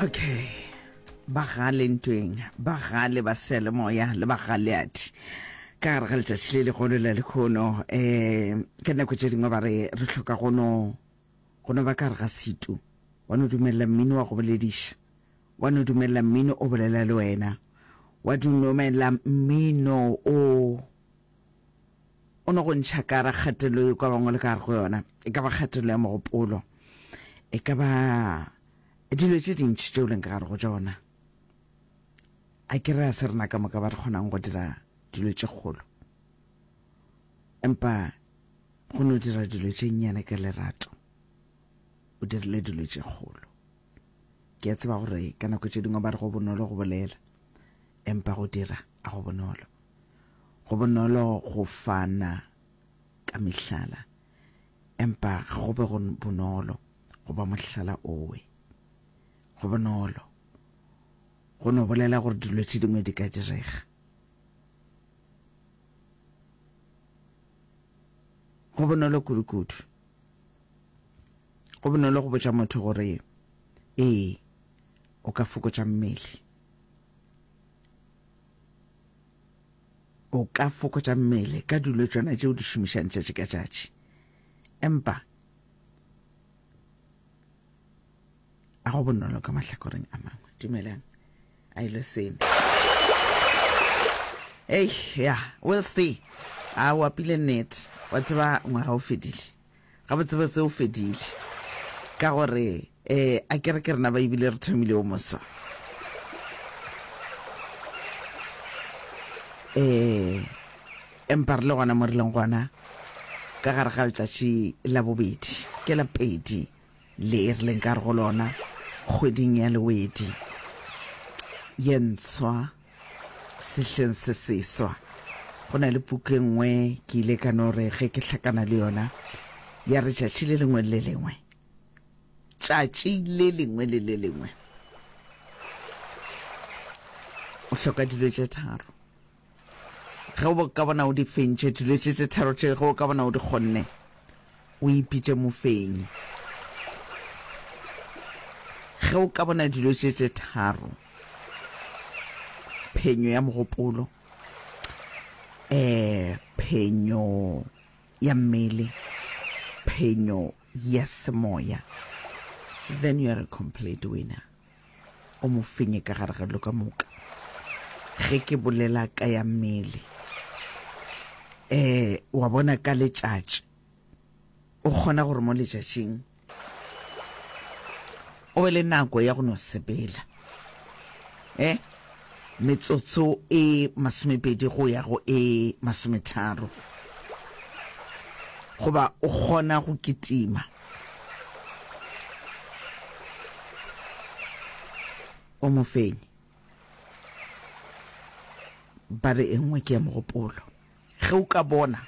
okay bagale ntweng bagale ba sele moya le bagaleati ka gare ga letšatši le legolo la lekgono um eh, ka nako tše dingwe ba re re tlhoka gono gono ba ka gare ga setu wa no dumelela mmino wa go bolediša wa no dumelela mmino o bolela le wena wa dumelela mmino o O no go ntšha ka ra kgatelo e kwa bangwe le ka gare go yona, e ka ba kgatelo ya mogopolo, e ka ba dilo tše dintši tšeo leng ka gare go tšona. A ke re a se rena ka moka ba re kgonang go dira dilo tše kgolo, empa go no dira dilo tše nnyane ka lerato o dirile dilo tše kgolo. Ke a tseba gore ka nako tše dingwe ba re go bonolo go bolela, Empa go dira a go bonolo. Go bonolo go fana ka mehlala, empa ga go be go bonolo go ba mohlala owe. Go bonolo go no bolela gore dilo tše dingwe di ka direga. Go bonolo kudu-kudu. Go bonolo go botša motho gore ee, o ka fokotša mmele. o ka fokotša mmele ka dilo tšona tšeo di šomišang tšatši ka tšatši empa a go bonolo ka mahlakoreng a mangwe dumelang a ile e sene ei ya wilsty a o apile net wa tseba ngwaga o fedile Gabotsebotse o fedile. Ka gore, e, a ke re ke rena ba ebile re thomile o moso. E, empa re le gona mo re leng gona, ka gare ga letšatši la bobedi, ke la pedi le e re leng ka re go lona, kgweding ya lewedi ye ntshwa. Sehleng se seswa, go na le puku e nngwe ke ile ka no re ge ke hlakana le yona, ya re tšatši le lengwe le le lengwe, tšatši le lengwe le le lengwe, o hloka dilo tše tharo. Ge o ka bona o di fentše dilo tše tše tharo tše, ge o ka bona o di kgonne, O ipitše mofenyi. Ge o ka bona dilo tše tše tharo, phenyo ya mogopolo, um phenyo ya mmele, phenyo ya semoya, then you are a complete winner. O mo fenye ka gare ga dilo ka moka. Ge ke bolela ka ya mmele. Eh, wa bona ka letšatši. O kgona gore mo letšatšing o be le nako ya go no sepela. Eh, metsotso e masomepedi go ya go e masometharo. Goba o kgona go kitima. O mofenyi. Ba re e nngwe ke ya mogopolo. Ge o ka bona,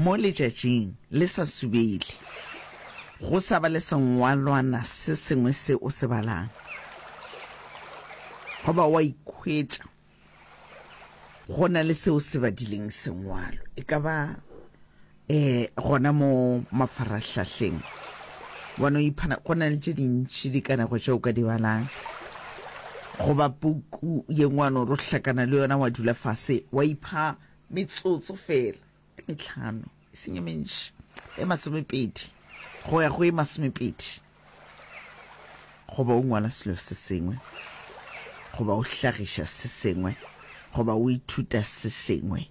mo letšatšing le sa subele, go sa ba le sengwalwana se sengwe se o se balang, goba wa ikhwetša Go na le seo se badileng sengwalo, e ka ba um gona mo mafarahlahleng, wa no iphana go na le tše dintši dikanego tše o ka di balang, goba puku ye ngwe wa no ro hlakana le yona, wa dula fase wa ipha metsotso fela. metlhano e seng e mentši e masomepedi go ya go e masomepedi goba o ngwala selo se sengwe goba o hlagiša se sengwe goba o ithuta se sengwe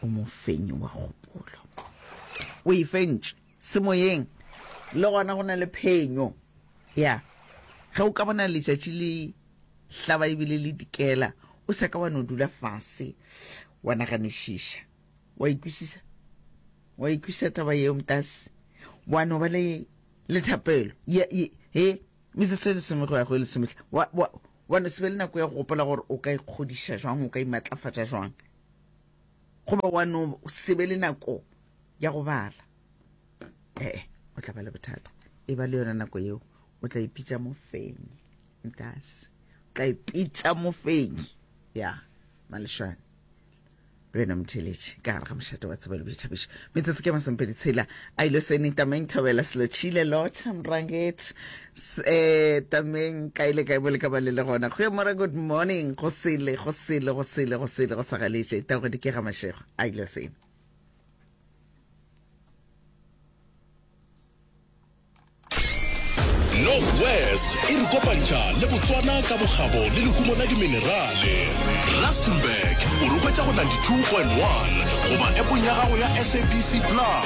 o mofenyi wa kgopolo o e fentše Semoyeng le gona go na le phenyo. Ya, ge o ka bona letšatši le hlaba e bile le dikela, o sa ka wa no dula fase wa naganišiša. Wa ikwisisa? Wa ikwisisa taba yeo, mtase? Wa no ba le le thapelo? Ya, ye, he, metsotso e lesome go ya go e lesometlha. Wa, wa, wa no se be le nako ya go gopola gore o ka ikgodiša jwang, o ka imatlafatša jwang? Goba wa no se be le nako ya go bala. Ee, o tla ba le bothata. E ba le yona nako yeo, o tla ipitša mofenyi. Ntase. O tla ipitša mofenyi. Ya, malešwane. Le wena motheletši, ka gare ga mošate wa tseba le boithabišo. Metsotso ke masompe ditshela. A ile seneta Main Thobela Selotšhile, Lotšha Mranget, Se tameng kae le kae mo le ka ba le le gona. Goeiemorwa, good morning. Go sele, go sele, go sele, go sele, go sa galetše. Tao go dikega mašego. A ile seng. northwest e re kopantšha le botswana ka bokgabo le lehumo la diminerale rustenburg o re hwetša go 92.1 goba epong ya gago ya sabc plus